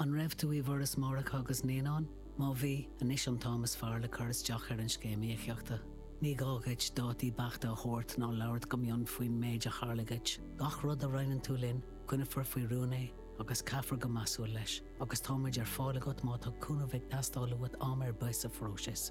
An raibh tú i bhForas Máithreacha agus Naíonán? Má bhí, anois an t-am is fearr le cur isteach ar an Scéim Íocaíochta. Ní gá dhuit dátaí beachta a thabhairt ná labhairt go mion faoin méid a tharla dhuit. Gach rud a roinneann tú linn, coinneofar faoi rún é agus caithfear go measúil leis, agus tá muid ar fáil agat má tá cúnamh ag teastáil uait am ar bith sa phróiseas.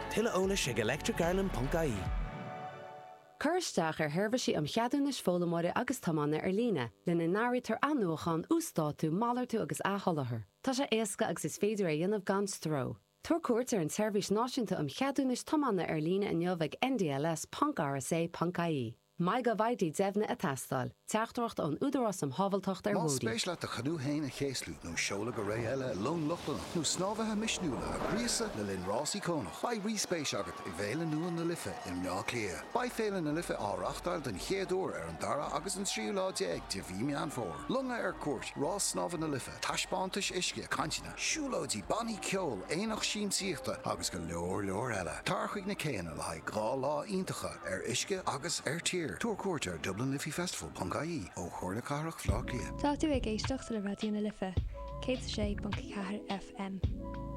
Tuilleadh eolais ag electricireland.ie. Cuir isteach ar sheirbhísí um cheadúnais foghlaimeoirí agus tiomána ar líne, lena n-áirítear athnuachan, uasdátú, malartú agus athsholáthar. Tá sé éasca agus is féidir é a dhéanamh gan stró. Tabhair cuairt ar an tSeirbhís Náisiúnta um Cheadúnais Tiomána ar Líne inniu ag ndls.rsa.ie. MyGovID deimhnithe ag teastáil. Teachtaireacht ón Údarás um Shábháilteacht ar Bhóithre. Más spéis leat do chanú fhéin a chéaslú nó seoladh go ré eile i long Lochlannach nó snámhaithe misniúla a ghríosadh le linn rás íocónach, beidh rí-spéis agat i bhFéile nua na Life i mBleá Cliath. Beidh Féile na Life á reáchtáil den chéad uair ar an dara agus an tríú lá déag de mhí Meán Fómhair. Longa ar cuairt, rás snámh na Life, taispeántais uisce, cainteanna. siúlóidí, bannaí ceoil, aonach siamsaíochta agus go leor leor eile. Tar chuig na céanna le haghaidh dhá lá iontacha ar uisce agus ar tír. Tabhair cuairt ar dublinliffeyfestival.ie ó Chomhairle Cathrach Bhleá Cliath. Tá tú ag éisteacht le Raidió na Life, 106.4 FM.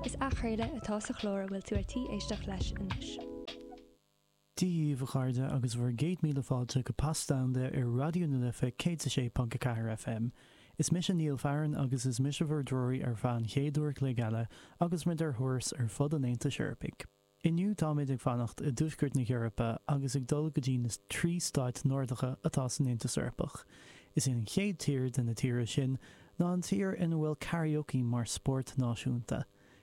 Is athchraoladh atá sa chlár a bhfuil tú ar tí éisteacht leis anois. Daoibh, a chairde, agus bhur gcéad míle fáilte go Pas Domhanda ar Raidió na Life 106.4 FM. Is mise Niall Farren agus is mise bhur dtreoraí ar feadh an chéad uair a chloig eile agus muid ar thuras ar fud an Aontais Eorpaigh. Inniu táimid ag fanacht i dtuaisceart na hEorpa agus ag dul go dtí na trí stáit Nordacha atá san Aontas Eorpach. Is í an chéad tír de na tíortha sin ná an tír ina bhfuil karaoke mar spórt náisiúnta.